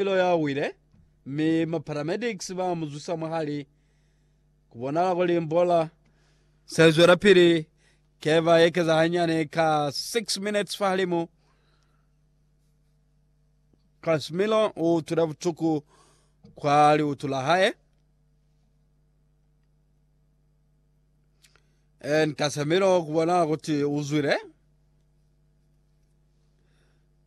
Lilo ya wile, mi ma paramedics ba mu zwisa mwa hali. Ku bonala kuli mbola se zwela pili, ke ba ekeza hanyane ka 6 minutes fa halimu. Casimiro u utwile butuku kwa liutu la hae. And Casimiro ku bonala kuti u zwile.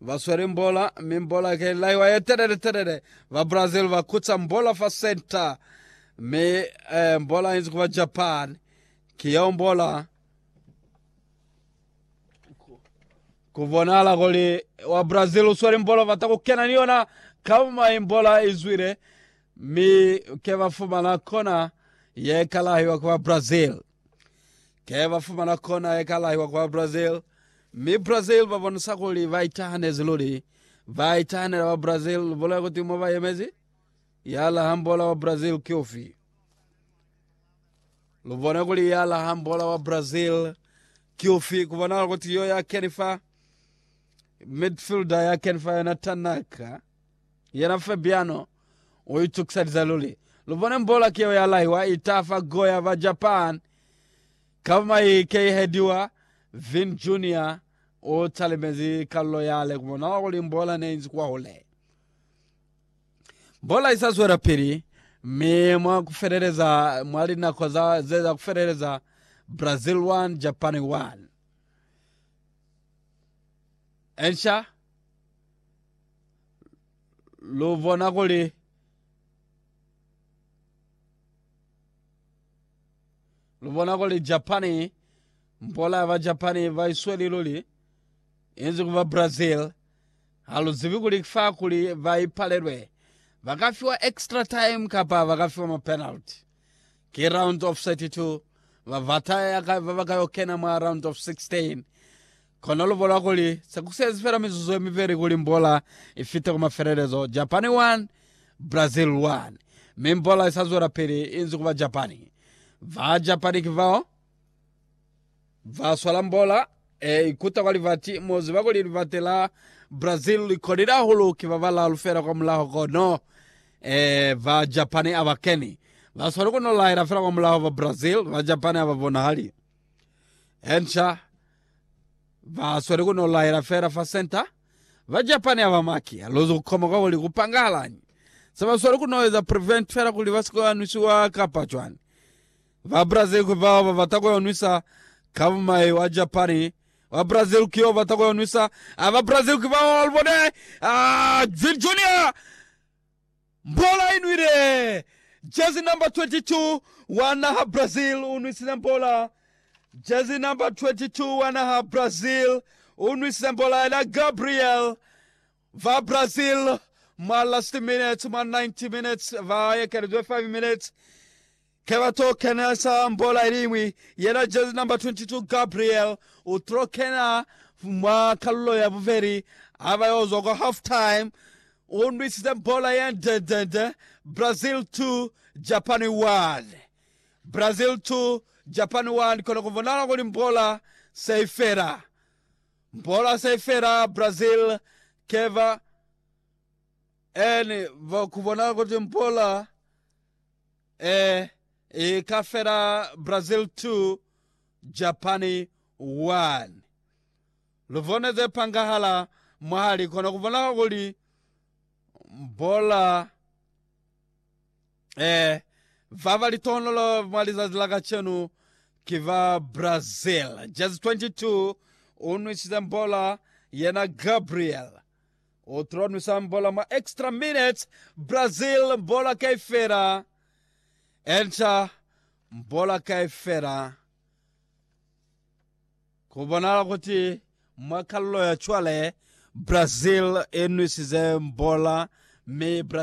ba sweli mbola, mi mbola ke laiwa ye telele telele. Ba Brazil ba kutsa mbola fa center, mi eh, mbola inzi kuba Japan. Ki yeo mbola kubonala kuli wa Brazil usweli mbola bata kukena ni yona kama imbola izwile, mi ke ba fumana kona ye kalaiwa kuba Brazil. Ke ba fumana kona ye ka lahiwa kwa Brazil, mi Brazil ba bonisa kuli ba itahanezi luli. Ba itahanela ba Brazil, lu bolela kuti mo ba yemezi? Ya lahang bola wa Brazil ki ufi? Lu bone kuli ya lahang bola wa Brazil ki ufi, ku bonahala kuti yo ya keni fa midfielder ya keni fa yona Tanaka. Yena Fabiano u itukisaliza luli. Lu bone mbolaki yeo ya laiwa i tafa goya ba Japan ka ba mai keihediwa. Vin Junior u talimezi kalulo yale ku bona kuli mbola ne inzi kwahule. Mbola isa zwelapili, mi mwa ku feleleza mwa linako za ze za ku feleleza Brazil 1, Japan 1. Ensha lu bona kuli lu bona kuli Japani mpola ya ba Japani ba isweli luli inzi ku ba Brazil ha lu zibi kuli fa kuli ba ipalelwe ba ka fiwa extra time kapa ba ka fiwa ma penalty ke round of 32 ba bata ya ka ba ba ka yo kena mwa round of 16 Kono lu bola kuli se ku sezi fela mizuzu ye mibeli kuli mbola i fite ku mafelelezo, Japani 1, Brazil 1, mi mbola i sa zwelapili i nzi ku ba Japani. Ba Japani ki bao ba swala mbola e ikuta kwa libati, mu ziba kuli libati la Brazil li kolile hahulu, ki ba balalu fela kwamulaho kono e ba Japani a ba keni. Ba swali ku no lahela fela kwamulaho ba Brazil, ba Japani a ba bonahali. Hensha. Ba sweli ku no laela fela fa senta. Ba Japani aba maki a luzi ku koma kwa kuli ku pangahalañi. Se ba sweli ku no eza prevent fela kuli ba si ke ba nwisiwa kapa cwani. Ba Brazil ki bao ba bata ku yo nwisa ka bumai wa Japani. Wa Brazil ki yo bata ku yo nwisa. Aa ba Brazil ki bao, lu bone! Aa, Vini Junior! Mbola i nwile! Jersey number 22 wa naha Brazil u nwisile mbola Jersey number 22 wa naha Brazil u nwisile mbola ya Gabriel va Brazil mwa last minutes, mwa 90 minutes va ekelezwe 5 minutes. Ke ba to kena sa mbola iliñwi yena jezi namba 22 Gabriel u tlo kena mwa kalulo ya bubeli ha ba yo zwa kwa half time. U nwisize mbola ye ndendende. Brazil 2, Japan 1. Brazil 2, Japan 1 kona ku bonahala kuli mbola se i fela. Mbola se i fela Brazil ke ba en ba ku bonahala kuti mbola Ee, i ka fela Brazil 2, Japani 1. Lu bone ze pangahala mwahali kono ku bonahala kuli bola ee ba ba litohonolo mwa lizazi la kacenu ki ba Brazil. Jezi 22 u nwisize bola yena Gabriel O tula nwisang bola mwa extra minutes, Brazil bola kaifela, Enter bola kaifela. Ku bonahala kuti mwa kalulo ya cwale, Brazil i nwisize bola mi Brazil